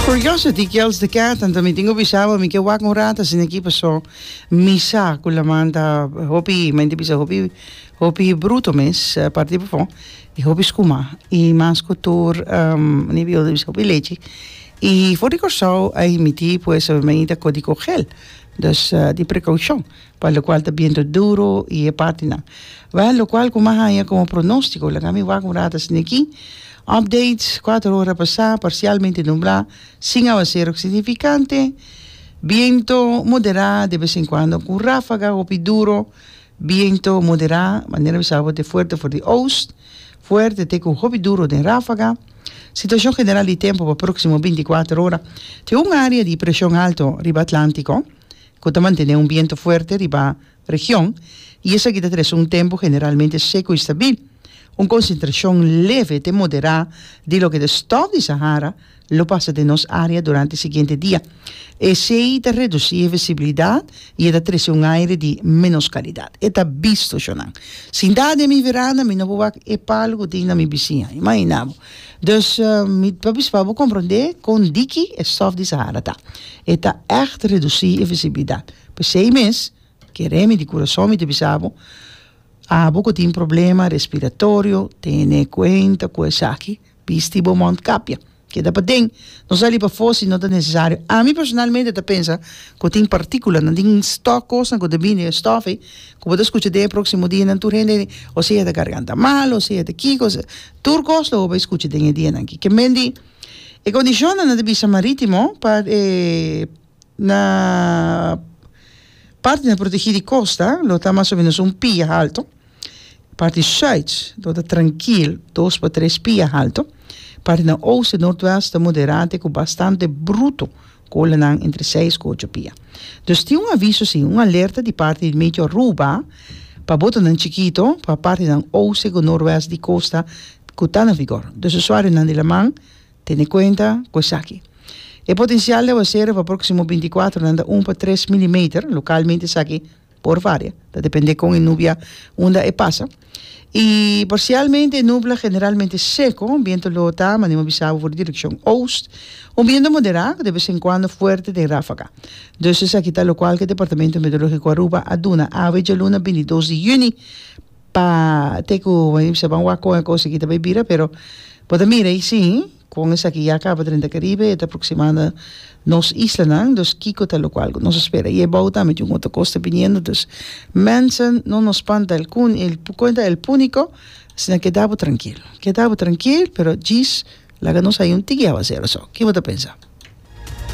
Curiosity kills the cat anto mi tin cu bisa bo mi ke wak un rato asina aki paso mi sa cu laman ta hopi mi tin cu bisa hopi hopi bruto mes aparte di befo y hopi scuma y mas cu tur ni biyo bisa hopi lechi y for di Corsou ay miti pues mi ta co di cogel dus di precaucion. pa lokual ta bientu duru i e partinan. Wèl, lokual ku m'a haña komo pronóstiko, laga mi wak un rata sini aki, Update, kuater ora pasá, parsialmente nublá, sin awaserok signifikante, bientu moderá de bes en kuando ku ráfaga hopi duru, bientu moderá, manera mi sa bo te fuerte for di oost, fuerte te ku hopi duru den ráfaga. Situashon general di tempu pa próksimo binti kuater ora, tin un área di preshon alto riba Atlántiko, ku ta mantené un bientu fuerte riba region i esaki ta trese un tempu generalmente seku i stabil. Un konsentrashon leve te moderá di loke ta stòf di Sahara lo pasa den nos área durante siguiente dia. Esei ta redusí e visibilidat i e ta trese un aire di ménos kalidat, e ta bisto, Shonan. Sintá den mi veranda mi no por wak e palu ku tin na mi bisiña. Imaginá bo! Dus mi ta bispá bo komprondé kon diki e sòf di Sahara ta. E ta ègt redusí e visibilidat. P'esei mes, keré mi di kurasou mi ta bisa bo, abo ku tin problema respiratorio, tene kuenta ku esaki, bisti bo mòntkapia. Keda paden, no sali pafó si no ta nesesario. Ami personalmente ta pensa ku tin partíkulanan, tin stòk kosnan ku ta bini den e stòf ei, ku bo ta skucha den e próksimo dianan tur hende ta di o si e ta garganta malo, o si e ta kiko, Tur kos lo bo bai skucha den e dianan aki. Ke men di e kondishonnan na divisa marítimo pa e na parti na protegí di kosta lo ta mas o menos un pia halto, parti sùit lo ta trankil dos pa tres pia halto, parti na oste, nòrtwèst ta moderate ku bastante bruto. Kolenan entre seis ku ocho pia. Dus tin un aviso si, un alerta di parti di Meteor Aruba pa botonan chikito pa partinan oste ku norwest di kosta ku ta na vigor. Dus usuarionan di laman tene kuenta ku esaki. E potensial di aguasero pa próksimo binti kuatronan ta un pa tres milimeter, lokalmente esaki Por varia, ta depende con e nubia unda e pasa. Y parcialmente e nubla generalmente seco, biento lo ta, manera mi a bisa bo, for di direccion oost, un biento modera cu de vez en cuando fuerte den rafaga. Dus esaki ta locual cu e Departamento Meteorologico Aruba a duna awe djaluna bintidos di juni pa te cu manera mi a bisa bo a wak con e cosaki ta bay bira pero bo ta mira y si Kon esaki ya kaba drenta Karibe, e ta proksimando nos islanan, dus kiko ta lo kual ku nos a spera? I ebou tambe tin un otro kos ta biniendo, dus Manson no nos spanta el kun el por kuenta el puniko, asina keda bo trankil, keda bo trankil, pero djis laga nos hay un tiki awa sero so, kibo ta pensa?